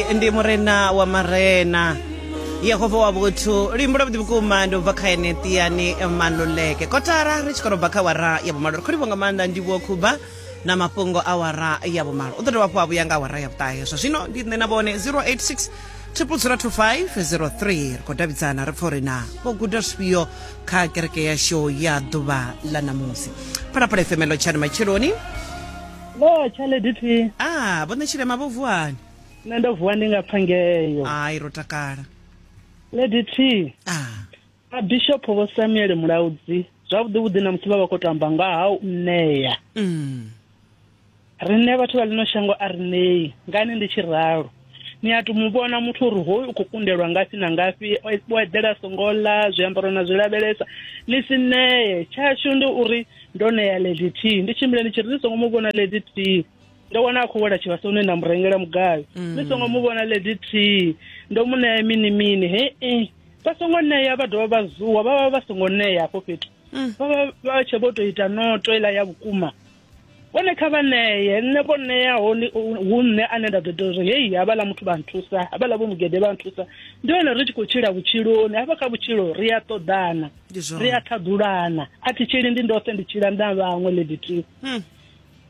ndi murena wa marena yehova wa vhuthu luimbo lwavhuḓi vhukuma ndi ubva kha ene tiani maluleke kotara ri tshi khou robva kha wara ya vhumalo ri khou livho nga maanḓa ndivhuo khuba na mafhungo a wara ya vhumalo u ḓo dovha hafhu a vhuya nga wara ya vhuṱahe zwa zwino ndi nṋe na vhone 086 2002503 ri khou davhidzana ri pfa uri na vho guda zwifhio kha kereke yashu ya ḓuvha ḽa ṋamusi phalaphala efemelo tshani matsheloni Lo, tshale DT. Ah, vho nṋe tshirema vho vuani. Nṋe ndo vuwa ndi nga pfa ngeyo. Ai ro takala. Lady T. Ah. A Bishop vho Samuel Mulaudzi zwavhuḓi vhuḓi na musi vha vha khou tamba nga ha u ṋea. Mm. Riṋe vhathu vha ḽino shango a ri ṋei ngani ndi tshi ralo. ni a to mu vhona muthu uri hoyu u khou kundelwa ngafhi na ngafhi o eḓela songo ḽa zwiambaro na zwi lavhelesa ni si nee tshashu ndi uri ndo ṋea lady t ndi tshimbile ndi tshi ri ni songo mu vhona lady t ndo wana a khou wela tshivhasoni nda mu rengela mugayo mm. ni songo mu vhona lady t ndo mu ṋea mini mini hee vha songo ṋea vha dovha vha zuwa vha vha vha songo ṋea hafho fhethu mm. vha vha vha tshe vho to ita noto iḽa ya vhukuma vhone kha vha ṋeye nṋe vho ṋeaho hu nṋe ane nda ḓo ita uri heyi havhaḽa muthu vha nthusa havhaḽa vho mugede vha nthusa ndi hone ri tshi khou tshila vhutshiloni hafha kha vhutshilo ri a ṱoḓana ri a ṱhaḓulana a thi tshili ndi ndoṱhe ndi tshila nda vhaṅwe lady t hmm.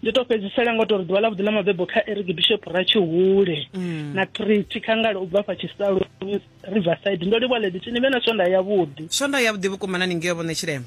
ndi to fhedzisela ngo tori ḓuvha ḽa vhuḓi ḽa mabebo kha eric bishop ra tshihule hmm. na treaty khangale u bva fha tshisaloni riverside ndo livha lady t ni vhe na swonda yavhuḓi swonda yavhuḓi vhukuma na ni ngeo vhone tshilema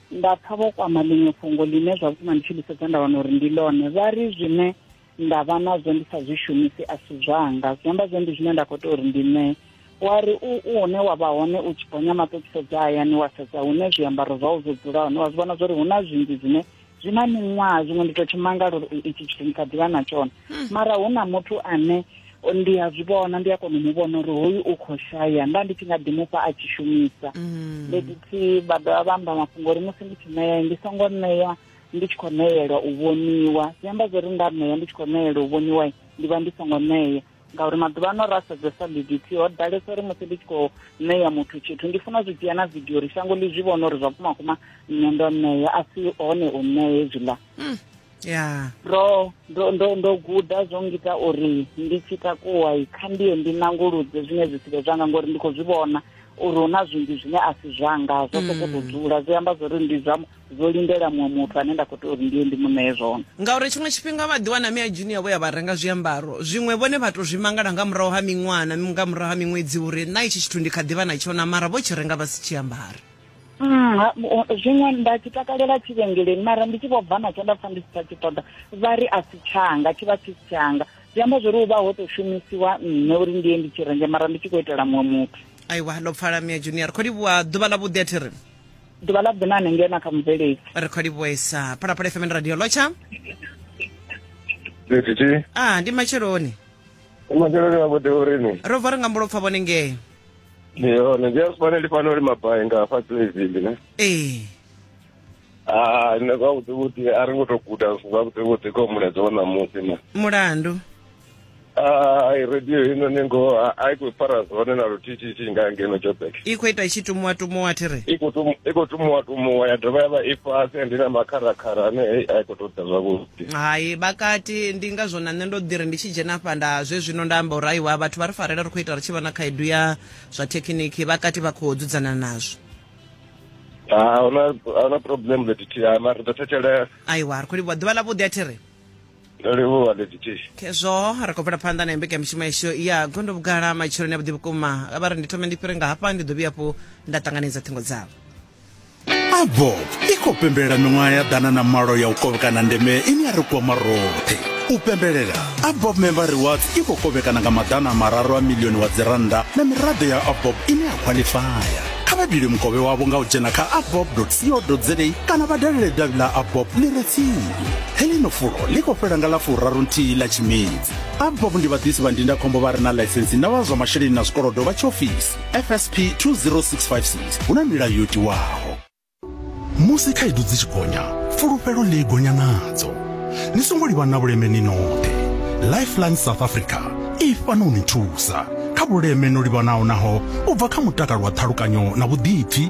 Nda pfa vho kwama ḽiṅwe fhungo ḽine zwa vhukuma ndi tshi ḽi sedza nda wana uri ndi ḽone. Vha ri zwine nda vha nazwo ndi sa zwi shumisi a si zwanga, zwi amba zwo ndi zwine nda khou tea uri ndi ṋee. Wa ri u u hune wa vha hone u tshi gonya maṱo u tshi sedza hayani wa sedza hune zwiambaro zwau zwo dzula hone wa zwi vhona zwa uri hu na zwinzhi zwine zwi na miṅwaha zwiṅwe ndi tou tshi mangala uri itshi tshithu ndi kha ḓi vha na tshone hmm. mara hu na muthu ane ndi a zwi vhona ndi a kona u mu vhona uri hoyu u khou shaya nda ndi tshi nga ḓi mufha a tshi shumisa mm. fhedzi vha dovha vha amba mafhungo uri musi ndi tshi ṋea ndi songo ṋea ndi tshi khou ṋeelwa u vhoniwa zwi amba zwo ri nda ṋea ndi tshi khou ṋeelwa u vhoniwa ndi vha ndi songo ṋea ngauri maḓuvha ano ra sedzesa bdt ho ḓalesa uri musi ndi tshi khou ṋea muthu tshithu ndi funa zwi dzhia na vidio uri shango ḽi zwi vhona uri zwa vhumakuma nṋe ndo ṋea a si hone u ṋea hezwiḽa mm. yeah. ndo ndo ndo ndo guda zwo ngita uri ndi tshi takuwa kha ndiye ndi nanguludze zwine zwi si vhe zwanga ngori ndi khou zwi vhona uri hu na zwinzhi zwine a si zwanga zwo sokou mm. dzula zwi amba zwori ndi zwa zwo lindela muṅwe muthu ane nda khou tea uri ndiye ndi muṋee zwone ngauri tshiṅwe tshifhinga vha ḓi wana mia junior vho ya vha renga zwiambaro zwiṅwe vhone vha to zwi mangala nga murahu ha miṅwana nga murahu ha miṅwedzi uri na itshi tshithu ndi kha ḓivha na tshona mara vho tshi renga vha si tshi ambara Mm, zwiṅwe nda tshi takalela tshivhengeleni mara ndi tshi vho bva natsho nda pfa ndi si tsha tshi ṱoḓa vha ri a si tshanga tshi vha tshi si tshanga zwi amba zwo ri u vha ho tou shumisiwa nṋe uri ndi ye ndi tshi renge mara ndi tshi khou itela muṅwe muthu aiwa ndo pfala mia junior kho livhuwa ḓuvha ḽa vhuḓi a thi ri ḓuvha ḽa ḓina hanengei na kha mubveledzi ri kho livhuwesa phalaphala fm radio lotsha Ndithithi, a ndi matsheloni umakelele wa vhuḓi urini? ro bva ri nga mbulo pfa vhone ngei ndi yone ndi asibone ndi fanela uri mabai nga hafha playville ne ee Ah, nṋe zwavhuḓi vhuḓi a ri ngo to guda zwithu zwavhuḓi vhuḓi kha mulaedza wa ṋamusi na mulandu Ah, i radio ino ni ngo a- a i khou fara zwone na luthithithi nga ngeno joburg i khou ita i tshi tumuwa tumuwa thi ri i khou tumu- i khou tumuwa tumuwa ya dovha ya vha i fhasi and i na makharakhara ane hei a i khou tou ḓa zwavhuḓi Hai, vha kati, ndi ngazwo na nṋe ndo ḓi ri ndi tshi dzhena afha nda zwezwino nda amba uri aiwa, vhathu vha ri farela ri khou ita ri tshi vha na khaedu ya zwa thekhiniki, vha kati vha khou dzudzana nazwo. Ha, a hu na a hu na problem Lady T, ha mara ri ḓo thetshelesa. Aiwa, ri khou livhuwa ḓuvha ḽavhuḓi a thi ri. Ndo livhuwa Lady T. Khezwo ri khou bvela phanḓa na mbekanyamushumo yashu ya gondo vhugala matsheloni avhuḓi vhukuma. Vha ri ndi thome ndi fhire nga hafha, ndi ḓo vhuya hafhu nda ṱanganedza ṱhingo dzavho. abob i khou pembelela miṅwaha ya ḓana na malo ya u kovhekana ndeme ine ya ri kwama roṱhe u pembelela abob member reward i khou kovhekana nga maḓana a mararu a milioni wa dzirannda na miraḓo ya abob ine ya khwaḽifaya kha vha dile mukovhe wavho nga u dzhena kha abob co za kana vha dalele davhi ḽa abob ḽi re tsini heḽino fulo ḽi khou fhela nga ḽa furaru nthihi ḽa tshimedzi abob ndi vhaḓisi vha ndindakhombo vha re na ḽaisensi na vha zwa masheleni na zwikolodo vha tshiofisi fsp 20656 hu na milayo yo tiwaho musi khaedu dzi tshi gonya fulufhelo ḽi gonya nadzo ni songo livha na vhuleme ni noṱhe lifeline south africa i fana u ni thusa kha vhuleme no livhanaho naho u bva kha mutakalo wa ṱhalukanyo na vhuḓipfi